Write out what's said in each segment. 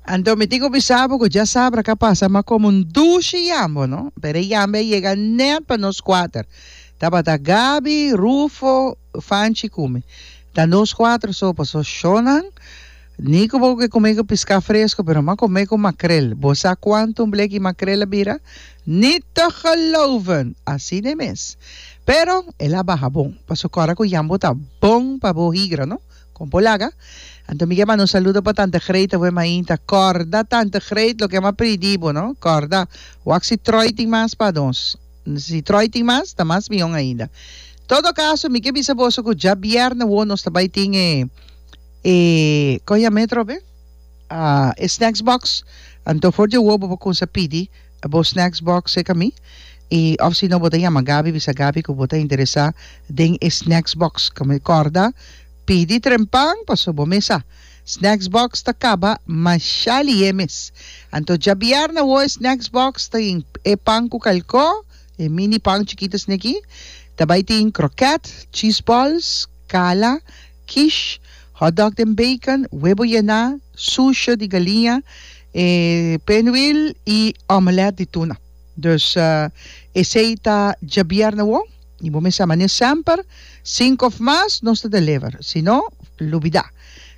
Anto mi tin ku bisa bo ku djasabra a ka pasa mas komo un dushi yambo no, pero e yambe a yega nèt pa nos kuater. Tabata Gabi, Rufo, Fanchi ku mi. Ta nos kuater so, paso shònan ni ku bo ke kume ku piska fresko pero mas kume ku makrel. Bo sa kuantu un bleki makrel a bira? Ni te geloven! Asina e mes. Pero el a baha bon, paso kòrda ku yambo ta bon pa bo higra no. Con por laga? Anto mi ke manda un saludo pa tante Greet ta wema ainta corda tante Greet loke ama pridi bo no corda wak si troy tin mas pa nos si troy tin mas ta mas mion ainda todo caso mi ke bisa boso cu dja bierne wo nos ta bay tin e e con yametrobe e snacks box anto for dje wo bo por cuminsa pidi A bo snacks box seca mi y of si no bo ta yama Gaby bisa Gaby cu bo ta interesa den e snacks box ca mi corda pidi trempan pasobra bo mesa snacks box ta caba masha lihe mes anto djabiar na wo e snacks box ta tin e pan cu calco e mini pan chikito esne aki ta bay tin croquet cheese balls cala quiche, hotdog den bacon, webo yená, sousje di galiña, e pinwheel y omelette di tuna. Dus esey ta djabièrnè wou y bo mester man'e semper, sink of mas nos ta deliver, si no lubidá.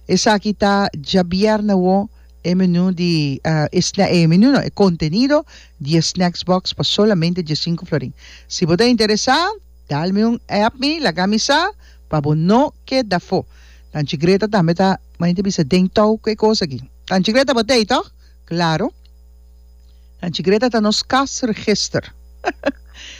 Esaki ta djabièrnè wou e menú di e sna e menú no e contenido di e snacks box pa solamente diesinco florin. Si bo ta interesá. Dal mi un app mi laga mi sa pa bo no keda fo. Tanchi Greta tambe ta mari ta bisa den tou ku e kos aki. Tanchi Greta bo tei toch? Claro. Tanchi Greta ta nos kas register.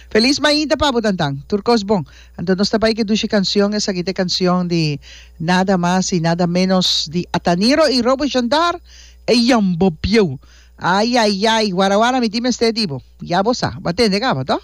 Feliz mainta pa bo tantan. Tur kos bon. Anto nos ta bai ke dushi kancion esaki ta e kancion di nada mas i nada menos di Ataniro i Robo Shandar e yambo bieu. Ai ai ai wara wara mi tin mester di bo. Ya bo sa. Bo a tende kaba toch?